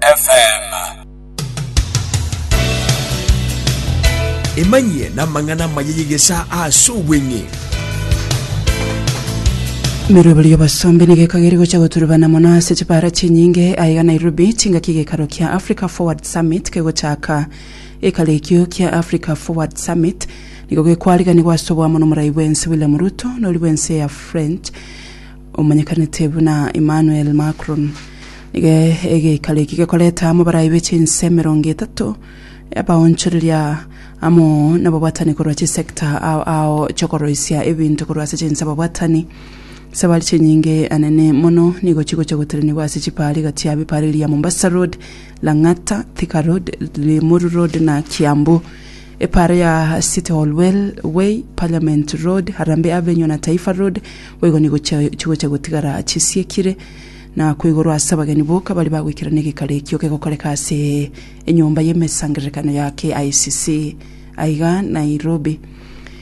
FM. Emanyie namang'ana amaya y'egesaa ase obweng'e. Emeroberi y'obosombe nigo ekagere gocha goturubana mono ase chibara chinyinge aiga Nairobi chingaki gekaro kia Africa Forward Summit kegochaka. Ekaro ekio kia Africa Forward Summit nigo gekwariganigwa ase oboamo nomorai bwense William Ruto nori bwense ya French omanyekanete buna Emmanuel Macron, nigo egeikaro eki gekorete amo abarai be chinse emerongo etato, abaonchoreria amo nababwatani korwa chisector ao ao chi'okoroisia ebinto korwa ase chinse ababwatani. Esabari chinyinge anene mono nigo chigocha goterenigwa ase chipariga chia bipariria Mombasa Road, Lang'ata, Thika Road, Limuru Road na Kiambu. Epaaro ya City Hall Well Way, Parliament Road, Harambee Avenue na Taifa Road boigo nigo chigocha gotigara chisiekire na ko igoro ase abageni boka baria bagoikerana egekaro ekio kegokoreka ase Enyomba y'Emesangererekano ya KICC aiga Nairobi.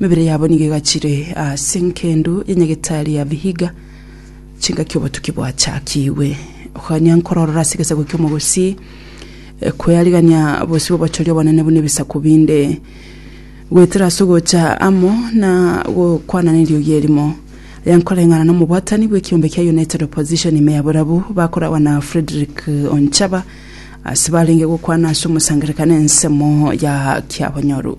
Emebere yabo nigo egachire ase engendu ya Nyagetari ya Vihiga, chingaki obotuki bwachakigwe. Okogania nkororora ase egesaku ki'omogosii, eh, kwearigania bosio bw'obochoria obonene buna ebisaku binde, goetera ase ogocha amo na gokwana neriogi erimo. Aya nkoreng'ana nomobwatani bw'ekiombe kia United Opposition ime ya Borabu, bakoragwa na Fredrick Onchaba, ase barenge gokwana ase omosangererekano ensemo ya Kiabonyoru.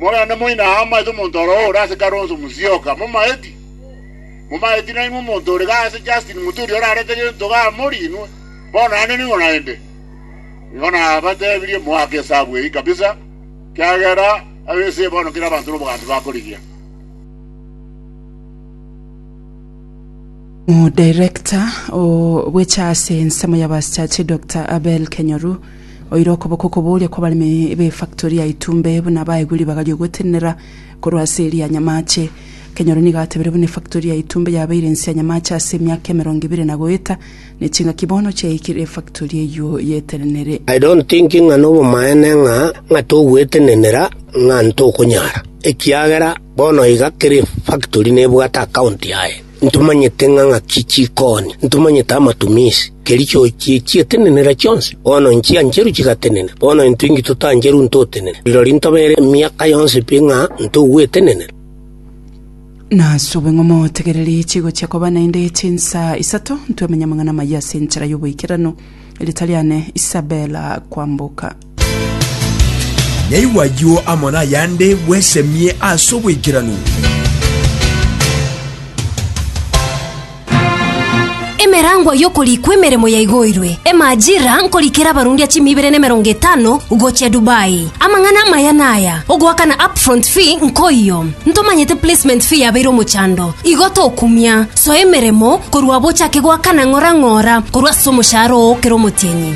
Morande moina aa amaete omonto oro ore ase Kalonzo Musyoka, momaeti? Momaeti nainwe omonto ore iga ase Justin Muturi orarete gento iga mori inwe? Bono naende nigo naende. Nigo nabatebirie moake esabu eyio kabisa, ekiagera ab'ense eye bono kera abanto nobogasu bakorigia. Omudirekta o bweche ase ensemo y'abaaschache Doctor Abel Kenyoru oire okoboko okoboria kw'abaremi b'efactori ya Itumbe buna baegwe ribaga ri'ogotenenera korwa ase eria nyamache. Kenyoru nigo atebire buna efactori ya Itumbe yabeire ense ya nyamache ase emiaka emerongo ebere na goeta ne chingaki bono chiaikire efactori eyio y'etenenere. I don't think ng'a nobomaene ng'a ng'a togoetenenera ng'a ntokonyara ekiagera Bono iga kera efaktori nebwate akaonti yaye, ntomanyete ng'a ng'aki chikooni, ntomanyete amatumiisi, keri chiochie chietenenera chionsi. Bono nchiancheru chigatenena, bono intwe inki totancheru ntotenene? Rirorio ntobeere emiaka yonsi pi ng'a ntogwetenenera. Nasobe ng'a motegererie chigochia koba naende chinsa isato, ntwe amanyamang'ana amaya ase enchera y'oboikeranu, riita riane Isabella kwamboka. Nyaigwe ayio amo nayande bwesemie ase oboikeranu. Emerangwa y'okorikwa emeremo yaigoirwe. Emajira nkorikera abarundia chimi ibere na emerongo etano gochia Dubai. Amang'ana amaya naya, ogoakana upfront fee nkoiyo. Ntomanyete placement fee yabeire omochando. Igo tokumia. Soa emeremo korwa abo ochake goakana ng'ora ng'ora korwa ase omoshahara oo kera omotienyi.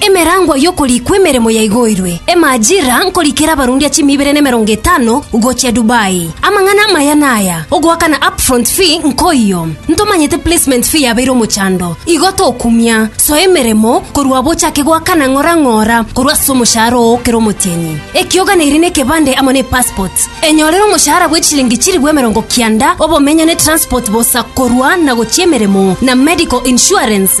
Emerangwa y'okorikwa emeremo yaigoirwe. Emajira nkorikera abarundia chimi ibere nemerongo etano gochia Dubai. Amang'ana amaya naya, ogoakana upfront fee nkoiyo. Ntomanyete placement fee yabeire omochando, igo tokumia. Soa emeremo korwa abo ochake goakana ng'ora ng'ora korwa ase omoshahara oo kera omotienyi. Ekioganeiri nekebande amo ne passport. Enyorere omoshahara bwe chilingi chilifu emerongo kianda, obomenyo ne transport bosa korwa na gochia emeremo na medical insurance.